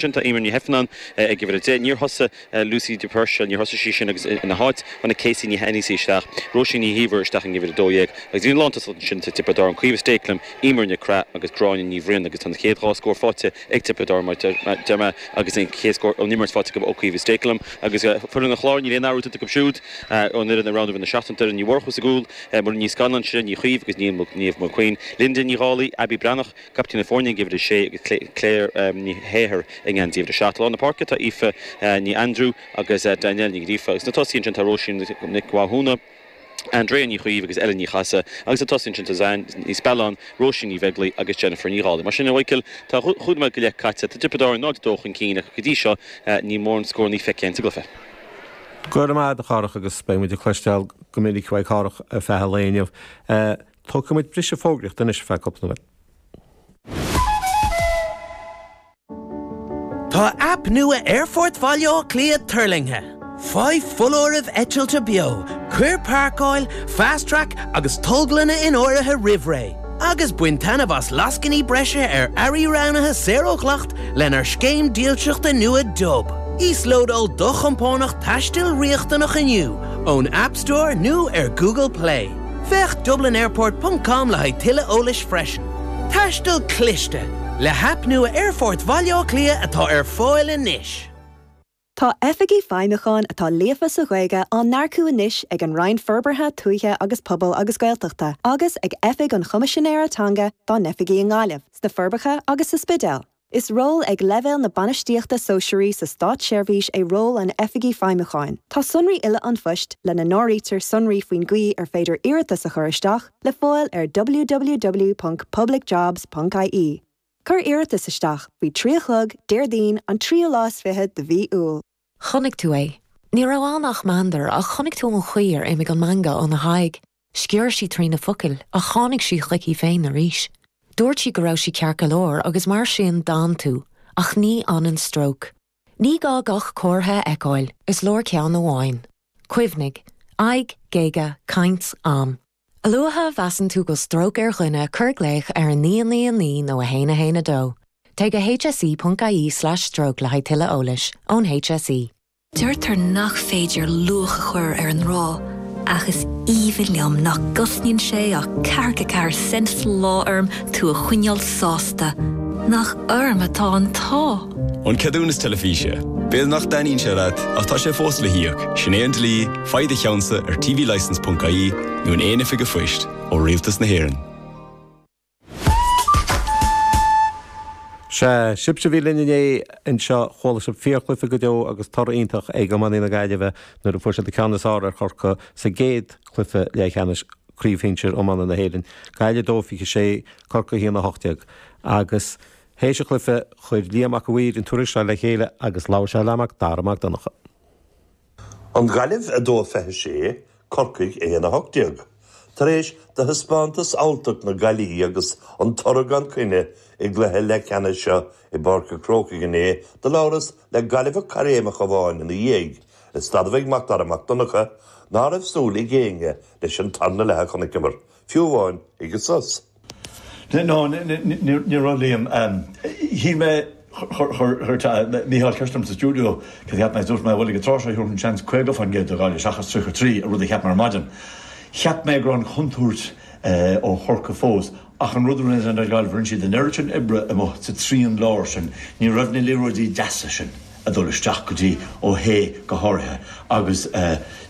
Sin, tá Emer Ní hIfearnáin ag uimhir a deich. Níor thosaigh Lucy de Puirséil, níor thosaigh sí sin agus ina háit, tháinig Casey Ní hAonghusa isteach, Róisín Ní hÍomhair isteach ag uimhir a dó dhéag agus bhí an lántosaíocht ansin sa Tiobraid Árann, Caoimhe Stakelum, Emer Nic Craith agus Gráinne Ní Bhriain agus tá an chéad dhá scór faighte ag Tiobraid Árann mar deir mé agus an chéad scór ón imirt faighte acu ó Caoimhe Stakelum agus foireann an Chláir, níl aon athrú déanta acu siúd ón fhoireann a roghnaíodh i lár na seachtaine, Doireann Ní Mhurchú sa gcúl, Muireann Ní Scanláin, Sinéad Ní Chaoimh agus Niamh Mulqueen, Linda Ní Dhálaigh, Abbie Breathnach. Caiptín na foirne ag uimhir a 6 agus Claire Ní hEithir i ngeansaí uimhir 7. Lár na páirce atá Aoife Ní Aindriú agus Danielle Ní Ghríofa agus sna tosaí ansin tá Róisín Nic Mhathúna, Andrea Ní Chaoimh agus Ellen Ní Chathasaigh agus sa tosaí ansin tá Ziyan Ní Spealáin, Róisín Ní Bheaglaoich agus Jennifer Ní Dhálaigh. Mar sin, a Mhichíl, tá chúig nóiméad go leith caite, tá Tiobraid Árann 0-2 chun cinn ach go dtí seo níl mórán scórannaí feicthe anseo againn. Go raibh maith agat a Chárthach agus beidh muid ag cloisteáil go minic uaidh Chárthach ar feadh an lae inniu. Tógfaidh muid briseadh fógraíochta anois ar feadh cúpla nóiméad. Tá aip nua Aerfort Bhaile Átha Cliath tuirlingthe. Faigh foláirimh eitilte beo, cuir Páirceáil, Fast Track agus Tolglanna in áirithe roimh ré, agus bain taitneamh as lascainí breise ar earraí roghnaithe saor ó dhleacht lenár scéim dílseachta nua Dub. Íoslódáil do chompánach taistil riachtanach inniu ón App Store nó ar Google Play. Féach dublinairport ponc com le haghaidh tuilleadh eolais freisin. Taisteal Cliste, Le haip nua Aerfort Bhaile Átha Cliath atá ar fáil anois. Tá Oifigigh Feidhmiúcháin atá líofa sa Ghaeilge á n-earcú anois ag an Roinn Forbartha Tuaithe agus Pobail agus Gaeltachta agus ag Oifig an Choimisinéara Teanga dá n-oifigí i nGaillimh, sna Forbacha agus sa Spidéal. Is ról ag leibhéal na bainistíochta sóisearaí sa státseirbhís é ról an Oifigigh Feidhmiúcháin. Tá sonraí uile an phoist, lena n-áirítear sonraí faoin gcaoi ar féidir iarratas a chur isteach, le fáil ar www.publicjobs.ie. Cuir iarratas isteach faoi trí a chlog Déardaoin an tríú lá is fiche de mhí Iúil. Chonaic tú é. Ní raibh ann ach meandar, ach chonaic tú an chaoi ar imigh an meangadh óna haghaidh. Sciorr sí trí na focail ach tháinig sí chuici féin arís. Dúirt sí go raibh sí ceart go leor agus mar sin d'fhan tú, ach ní fhanann stróc. Ní gá gach comhartha a fheiceáil, is leor ceann amháin. Cuimhnigh. Aghaidh, géaga, caint, am. A luaithe a mheasann tú go bhfuil stróc ar dhuine cuir glaoch ar 999 nó 112. Téigh go hse.ie/stroke le haghaidh tuilleadh eolais, ón hse. Deirtear nach féidir luach a chur ar an ngrá, ach is aoibhinn liom nach gcosnaíonn sé ach ceathracha ceathair cent sa lá orm tú a choinneáil sásta. Nach orm atá an t-ádh! An ceadúnas teilifíse. B'fhéidir nach dtaitníonn sé leat, ach tá sé fós le híoc, sin é an dlí, faigh do cheannsa ar tvlicence.ie nó in aon oifig an phoist ó Rialtas na hÉireann. Sea, sibhse a bhí linn inné anseo, chuala sibh fíorchluiche go deo agus toradh iontach ag iománaí na Gaillimhe nuair a fuair siad an ceann is fearr ar Chorcaigh sa gcéad cluiche leathcheannais Craobh Shinsir Iomána na hÉireann, Gaillimh 2, 26, Corcaigh 1, 18. Agus théis an chluiche, chuir Liam Mac a' Mhaoir an tuairisc seo le chéile agus labhair sé le Mac Dara Mac Donncha. An Ghaillimh 2 26 Corcaigh 1 18 Tar éis do thaispeántas alltacht na Gaillimhe agus an toradh gan coinne i gcluiche leathcheannais seo i bPáirc an Chrócaigh inné do labhras le Gaillimheach caithréimeach amháin ina dhiaidh is d'admhaigh Mac Dara Mac Donncha ná raibh súil ag éinne leis an tarna leath a chonaiceamar, fiú amháin, ag an sos. No, ní raibh Liam. Shíl mé, chuir Mícheál ceist orm sa stiúideo cad a cheap mé is dúirt mé, bhuel ag an tráth seo thabharfainn seans 50% do Ghaillimh seachas 33, an rud a cheap mé ar maidin. Cheap mé go raibh an chontúirt ó Chorcaigh fós ach an rud a rinne Gaillimh, rinne siad an oiread sin oibre amuigh sa trian láir sin, ní raibh na liathróidí deasa sin. a dhul isteach go dtí Ó hAodha go háirithe agus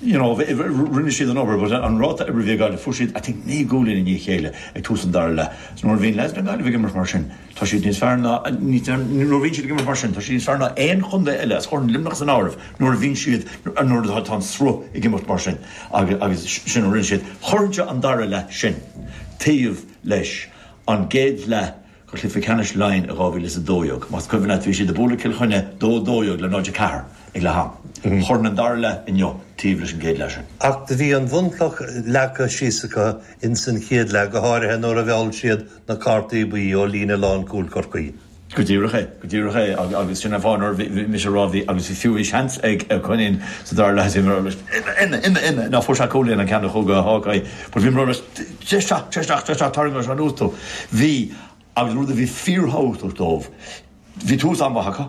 you know rinne siad an obair but an ráta oibre a bhí ag Gaillimh fuair siad I think naoi gcúilín i ndiaidh a chéile ag tús an dara leath so nuair a bhíonn leaids na Gaillimhe ag imirt mar sin tá siad níos fearr ná nuair a bhíonn siad ag imirt mar sin tá siad níos fearr ná aon chontae eile is chuirfinn Luimneach san áireamh nuair a bhíonn siad nuair atá tá an sruth ag imirt mar sin agus agus sin a rinne siad chuirfinnse an dara leath sin taobh leis an gcéad leath de Chluiche Ceannais Laighean i 2012. Más cuimhin leat, bhí siad ag bualadh Cill Chainnigh 2 12 le 0 4 ag leath am. Chuirfinn an dara leath inniu taobh leis an gcéad leath sin. Ach do bhí an bhunchloch leagtha síos acu ins an chéad leath, go háirithe nuair a mheall siad na cártaí buí ó líne lán-chúil Chorcaí. Go díreach é, go díreach é agus sin an fáth nuair a bhí mise ag rá, bhí, agus bhí fiú, bhí seans ag Cill Chainnigh sa dara leath, bhí mé ag rá leis, ina, ina, ina, ina, ná fuair sé cúl, an ceann a chuaigh go Hawkeye, but bhí mé ag rá leis, Téigh isteach, téigh isteach, téigh isteach, tarraingeoidh sé anuas thú. Bhí, agus rud a bhí fíorthábhachtach dóibh, bhí tús an-mhaith acu.